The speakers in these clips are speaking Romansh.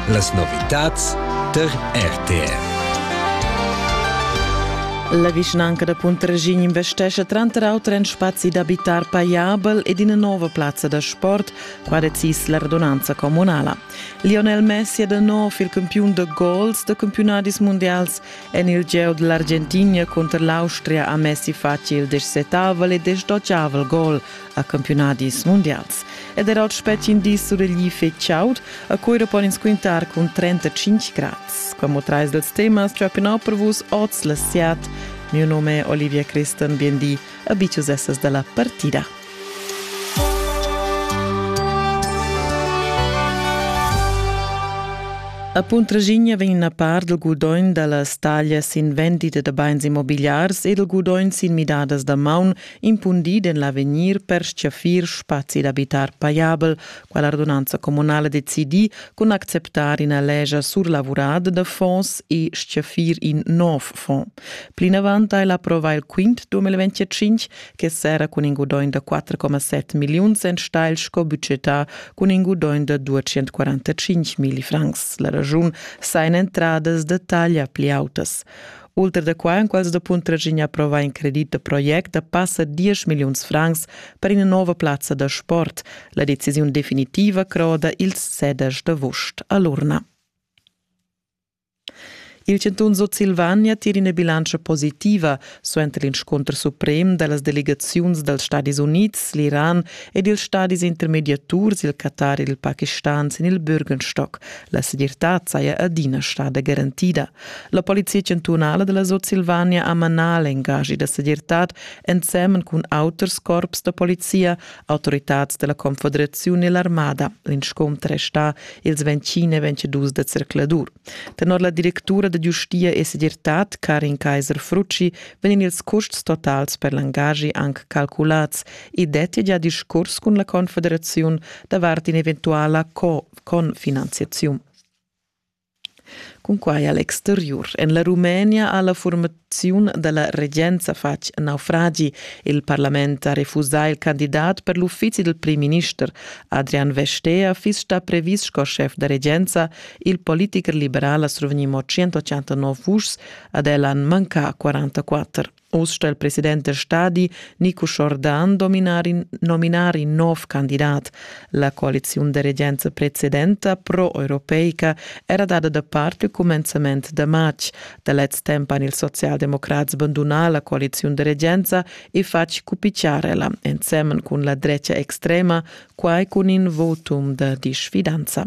Las novitads tar RTR. La vischnanca da Puntraschign investescha tranter auter en spazi d'abitar paiabel ed ina nova plazza da sport, qua decis la radunanza communala. Lionel Messi è da nov il campiun da gols da campiunadis mundials en il gieu da l'Argentina cunter l'Austria a Messi fatg il dexetavel e destoccavel gol a campiunadis mundials ed era il spetgin dis suregli fetg chaud, a Cuira pon ins quintar cun 35 grads. Como trais dels temas ciapenau per vus oz le siat. Mio nome è Olivia Christen, biendi, abitius essas dalla partida. A Puntraginha vegn una par del gudogn dalla staglia sin vendita da bains immobiliars e del gudogn sin midadas da maun impundid en l'avegnir per stgaffir spazi d'abitar pajabel, quella radunanza communala decidi cun acceptar ina legia surlavurada da fonds e stgaffir in nov fond. Plinavant ha el approvà il quint 2025 che serra cun in gudaugn da 4,7 milliuns enstagl sco budgetà cun in gudaugn da 245 milli francs. La ragiun sa en entradas da taglia pli autas. Ultra da quai han quels da Puntraschigna approvà in credit da project da passa 10 milliuns francs per ina nova plazza da sport. La decisiun definitiva croda ils ceders d'avost a l'urna. Il chantun Sutsilvania tira ina bilantscha positiva suenter l'inscunter suprem da las delegaziuns dals Stadis Unids, l'Iran ed ils stadis intermediaturs, il Qatar ed il Pakistan sin il Bürgenstock. La segirtad saja adina stada garantida. La polizia chantunala della Sutsilvania ha manà l'engagi da segirtad ensemen cun auters corps da polizia, autoritads della Confederazione e l'armada. L'inscontr è sta ils 20 e 22 de circladur. Tenor la directura de giustia e segirtad Karin Kaiser-Frucci vegn ils custs totals per l'engagi anche calculats e detti già discurs cun la Confederazione davart in eventuala co-finanziazione. Cunquai a l'exteriur en la Rumenia ha la furmaziun da la regenza fatg naufragi. Il parlament ha refusà il candidat per l'uffizi dal primminister. Adrian Vestea fiss stà previs sco schef da regenza. Il politicher liberal ha survegni mo 189 vuschs, ad el han mancà 44. Oz sta il president del stadi Nico Jordan dominar in, nominar in nov candidat. La coaliziun de regenza precedenta pro-europeica era dada da parte il commenzament de matg. Da lez temp han ils socialdemocrats bandunà la coaliziun de regenza e fatg cupicciarella, ensemen cun la drecia extrema, quai cun in votum de disfidanza.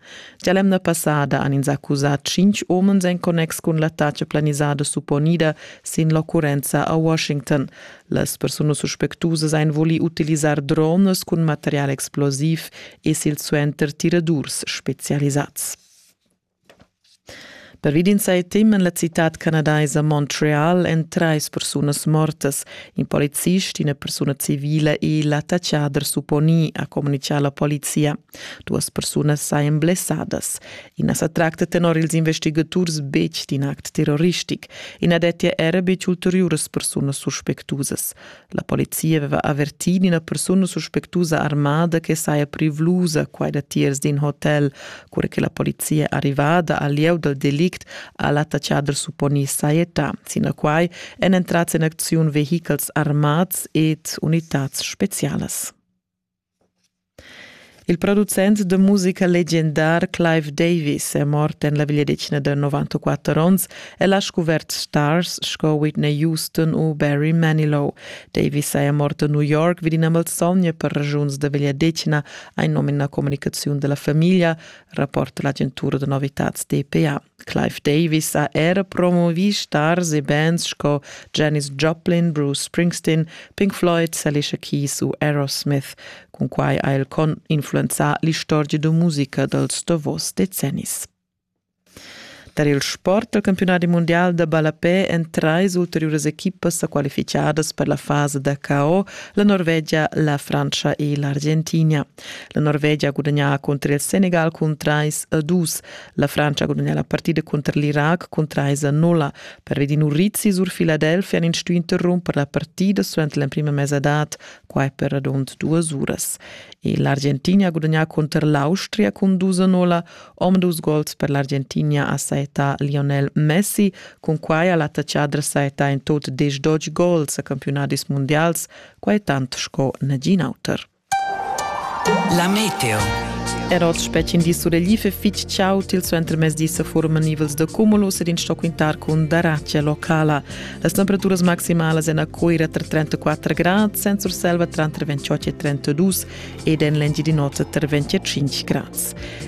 Gia l'emna passada han ins accusà tschintg umens en connex cun l'attacca planisada supponida sin l'occurrenza a Washington. Las persunas suspectusas han vulì utilisar drones cun material explosiv e silsuenter tiradurs spezialisads. Pervi d'in sai tem en la citad canadaisa Montreal èn trais persunas mortas. In policist, ina persuna civila e l'attachader supponì, ha communitgà la polizia. Duas persunas sajan blessadas. I na sa tracta tenor ils investigaturs betg d'in act terroristic. I na dettia era betg ulteriuras persunas suspectusas. La polizia aveva avertì d'ina persuna suspectusa armada che saja privlusa quai datiers d'in hotel. Cura che la polizia è arrivada al lieu dal delict ha l'attacchader supponì sajetà. Sinaquai èn entrads en acziun vehichels armads ed unitads spezialas. Il producent da musica legendar Clive Davis è mort en la vegliadetgna da 94 onns. El ha scuvert stars sco Whitney Houston u Barry Manilow. Davis saja mort a New York vid ina malsogna per ragiuns da vegliadetgna, ein nom in la comunicaziun della famiglia, rapport dell'agentura da novitads DPA. Clive Davis ha era promovì stars e bands sco Janis Joplin, Bruce Springsteen, Pink Floyd, Alicia Keys u Aerosmith. Cun quai ha el influenzà l'istorgia da musica dals davos decennis. Tar il sport al campiunat mundial da ballapè èn trais ulteriuras equipas sa qualificadas per la fasa da KO, la Norvegia, la Frantscha e l'Argentina. La Norvegia ha gudagnà cunter il Senegal cun trais a dus. La Frantscha ha gudagnà la partida cunter l'Irac cun trais a nulla. Pervedi Nurizi sur Philadelphia han in stuì interrumper la partida suenter l'emprima mesadad, quai per radund duas uras. E l'Argentina ha gudagnà cunter l'Austria cun dus a nulla. Om dus gols per l'Argentina ha saettà Lionel Messi. Cun quai ha l'attachadra saettà in tot diesch dodge gols a campiunadis mundials, quai tant sco nagin auter. La meteo. Er oz spetgin di sureglif e fitg ciao til suenter mezdi sa forman nivels da cumulus ed in sto quintar cun daracia locala. Las temperaturas maximalas en a Coira tra 34 grad, senza Urselva tra 28 e 32 ed en l'Engiadin'Ota tra 25 grad.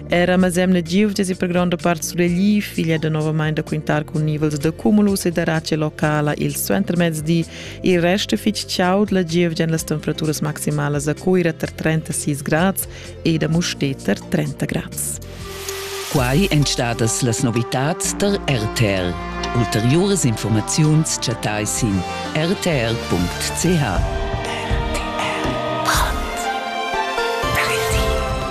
Era Mazemna Giuvges e per grande parte sureglif, figlia da novamente da quintar cun nivels da cumulus e daracia locala il suenter mezdi Il rest è fitg chaud, la gievgia èn las temperaturas maximalas a Cuira tar 36 grads ed a Mustér tar 30 grads. Quai èn stadas las novitads tar RTL. Ulteriuras informaziuns chattai sin rtl.ch.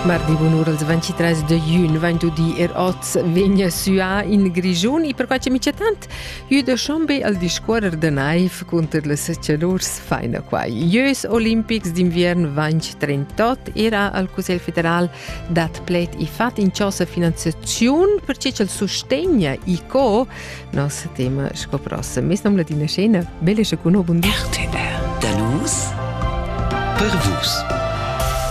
Mardi bunur als 23 de jun 20 di er oz vegna suà in Grigiun e per quai che mi tant Jüda Schombe al discuorrer da naiv cunter las chalurs faina quai. Ieus olimpics d'inviern vanch 38 era al Cussegl federal dat pled i fat in chosa finanziaziun per che ch'el sustegna i co nos tema sco prossem. Mes nom ladina scena, belle sche cuno bun di. RTL. Danus per vus.